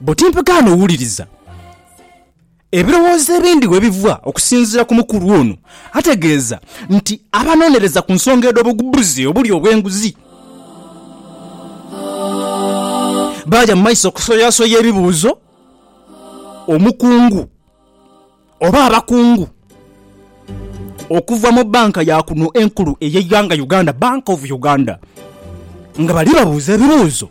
Buti mpagaano wuliriza ebirowoozo ebindi we biva okusinziira ku mukulu ono ategeeza nti abanonereza ku nsonga edh'obugubuzi obuli obw'enguzi baaja mu maiso okusoyasoya ebibuuzo omukungu oba abakungu okuva mu bbanka ya kuno enkulu ey'eighanga Uganda, Bank of Uganda, nga bali babuuza ebibuuzo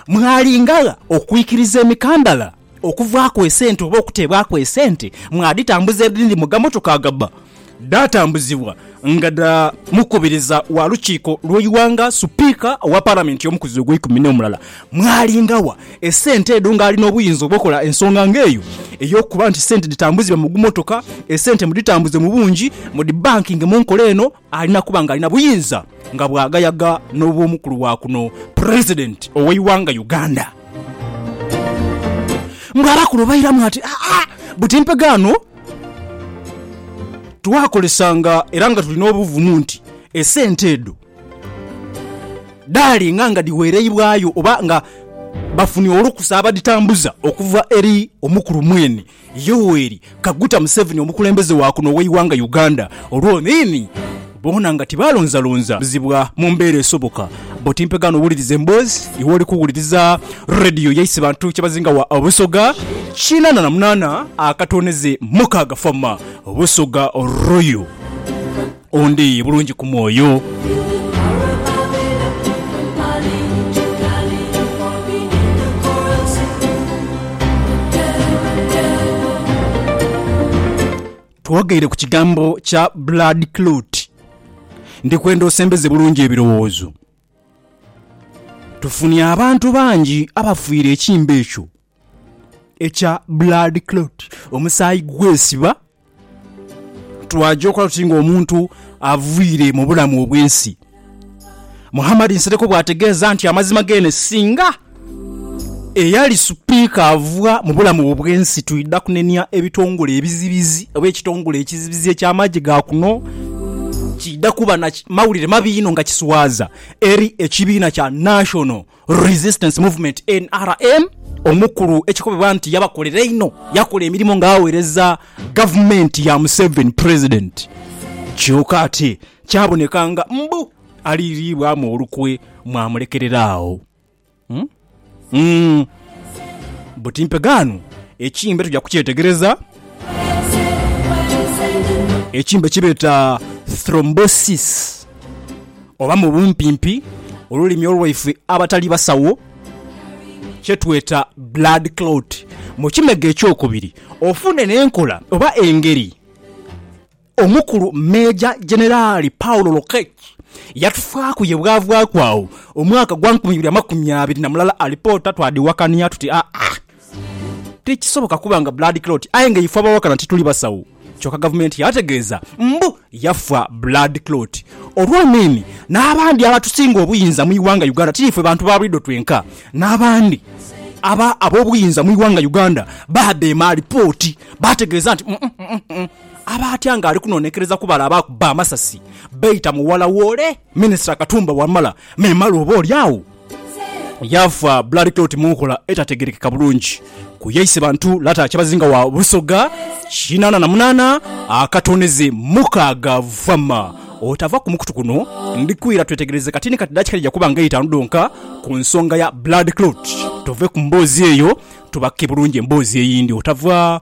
mwalinga gha okwikiriza emikandala okuvaaku esente oba okuteebwaku esente, mwaditambuza edhindi mu gamotoka agabba dhaatambuzibwa nga dha mukubiriza wa lukiiko lw'eighanga, Supiika wa Palamenti y'omukuzi ogweikumi n'omulala, mwalingagha esente edho ng'ali n'obuyinza obw'okola ensonga ng'eyo ey'okuba nti sente dhitambuzibwe mu gummotoka, esente mudhitambuze mu bungi, mudhibankinge mu nkola eno, alina kuba ng'alina buyinza nga bwagayaga n'obw'omukulu wa kuno, President ow'eighanga Uganda. Mbu abakulu bairamu ati, Aa, buti mpegho ano! Twakolesanga era nga tuli n'obuvumu nti esente edho dhaalenga nga dhiweereibwayo oba nga bafunye olukusa abadhitambuza okuva eri omukulu mwene Yoweri Kaguta Museveni omukulembeze wa kuno ow'eighanga Uganda olwoniini. Boona nga tibaalonzalonza bizibwa mu mbeera esoboka. Bo timpegaano wuliriza emboozi iwe oli kuwuliriza Radio yaise bantu kyebazinga wa Busoga kinaana na munaana akatooneze mukaaga Farmer Busoga Royal ondi bulungi ku mwoyo. Twogeire ku kigambo kya blood clot. Ndi kwenda osembeze bulungi ebirowoozo. Tufunye abantu bangi abafiire ekimbe ekyo ekya blood clot, omusaayi gwesiba. Twaja okola tuti ng'omuntu aviire mu bulamu obw'ensi. Muhammad Nsereko bw'ategeeza nti amazima geene singa eyali Sipiika ava mu bulamu obw'ensi twidha kunenia ebitongole ebizibizi oba ekitongole ekizibizi eky'amagye ga kuno kiidha kuba na mawulire mabi inho nga kiswaza eri ekibiina kya National Resistance Movement, nrm, omukulu ekikobebwa nti yabakolera einho, yakola emirimo nga awereza gavumenti ya Museveni Pulezidenti kyoka ate kyaboneka nga mbu aliiriibwamu olukwe mwamulekerera agho. Buti mpegaano ekimbe tuja kukyetegereza. Ekimbe kyebeeta Thrombosis. Oba mu bumpimpi, olulimi olwaife abatali basawo kye tweta blood clot mu kimega eky'okubiri, ofune n'enkola oba engeri Omukulu Meeja Jeneraali Paul Lokech yatufaaku ye bwavaaku agho omwaka gwa nkumi ibiri amakumi abiri na mulala alipoota twadhiwakania tuti aa, Tikisoboka kuba nga blood clot aye nga ife abawakana tituli basawo kyoka gavumenti yategeeza mbu yafa blood clot olw'amaini n'abandi abatusinga obuyinza mu ighanga Uganda ti ife bantu ba bulido twenka n'abandi aba ab'obuyinza mu ighanga Uganda baadheema alipooti baategeeza nti aba atya nga ali kunonekereza kubala abaakubba amasasi beita mughala w'ole Minisita Katumba Wamala memale oba olyagho yaafa blood clot mu nkola etategerekeka bulungi ku yaise bantu lata Kyabazinga wa Busoga kinaana na munaana akatooneze mukaaga vama otava ku mukutu guno ndi kwira twetegereze kati ni kati dakiika dhija kuba nga eitaanu dhonka ku nsonga ya blood clot tuve ku mboozi eyo tubake bulungi emboozi eyindi otava